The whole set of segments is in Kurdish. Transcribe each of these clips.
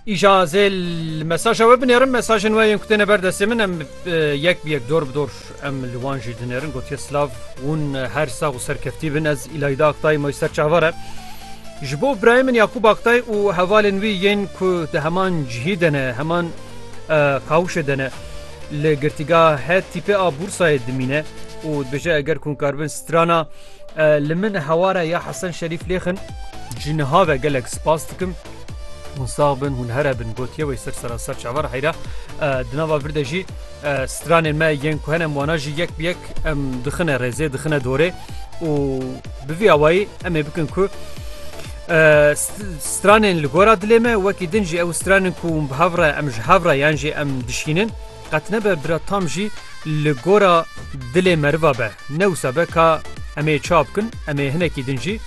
Îja zê li mesaja we binêrin mesajên we yên ku têne ber destê min em yek bi yek dor bi dor em li wan jî dinêrin gotiye silav hûn her sax û serkeftî bin ez îlayda Aktay moy ser çavare ji bo birayê min Yakûb Aktay û hevalên wî yên ku di heman cihî de ne heman kawişê de ne li girtîga het tîpê a bûrsayê dimîne û dibêje eger kûnkarbin strana Li min heware ya Hesen Şerîf lêxin ji niha ve gelek spas dikim. Hûn sax bin hûn here bin gotiye wê ser sera ser çavar heyra di nava vir de jî stranên me yên ku henem wana jî yek bi yek em dixine rêzê dixine dorê û bi vî awayî em ê bikin ku stranên li gora dilê me wekî din jî ew stranên ku hûn bi hev re em ji hev re yan jî em dişînin Qet nebe bira tam jî li gora dilê meriva be. Ne wisa be ka em ê çawa bikin, em ê hinekî din jî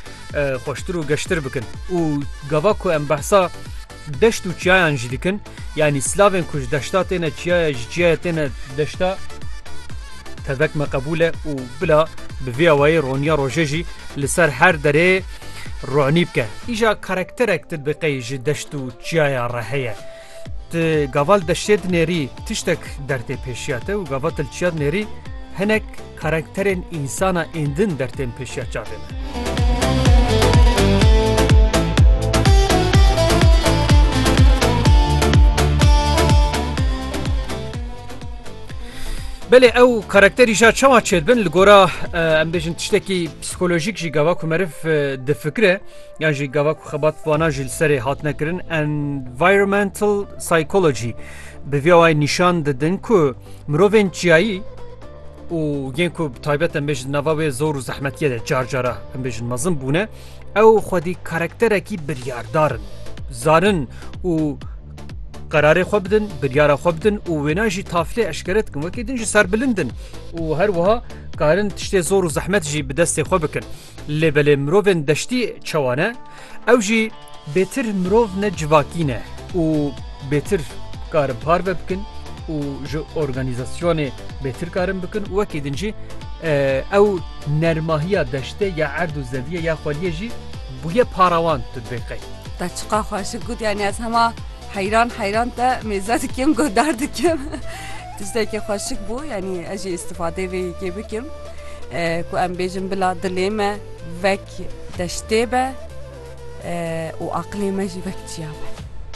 xweştir û geştir bikin. Û gava ku em behsa deşt û çiyayan jî dikin, yanî silavên ku ji deşta têne çiyayê, ji çiyayê têne deşta, tevek me qebûl e û bila bi vê awayî roniya rojê jî li ser her derê ronî bike. Îja karakterek ti biqey ji deşt û çiyaya re heye. Ti gaval deştê di nêrî tiştek dertê pêşiya te û gava tilçiya di nêrî hinek karakterên însana êndin dertên pêşiya çavê me. Belê ew karakterî ja çawa çêdibin li gora em bêjin tiştekî psîkolojîk jî gava ku meriv difikire. Yan jî gava ku xebat vana jî li serê hatine kirin environmental psychology bi vê wayê nîşan didin ku mirovên çiyayî û yên ku taybet em bêjin nava wê zor û zehmetiye de car cara em bêjin mezin bûne ew xwedî karakterekî biryardarin zarin û قرارê xwe bidin biryara xwe bidin û wêna jî taflê eşkere dikin wekê din jî serbilindin û her wiha karin tiştê zor û zehmet jî bi destê xwe bikin. Lê belê mirovên deştî çawa ne? Ew jî bêtir mirov ne civakî ne û bêtir karin parve bikin û ji organîzasyonê bêtir karin bikin û wekî din jî ew nermahiya deştê ya erd û zediyê ya xweliyê jî bûye parawan tu dibê qey. Te çiqa xweşik got yanî ez hema heyran heyran te mêze dikim guhdar dikim. Tiştekî xweşik bû yanî ez jî îstifadeyê vê yekê bikim. Ku em bêjin bila dilê me vek deştê be û aqilê me jî vek çiya be.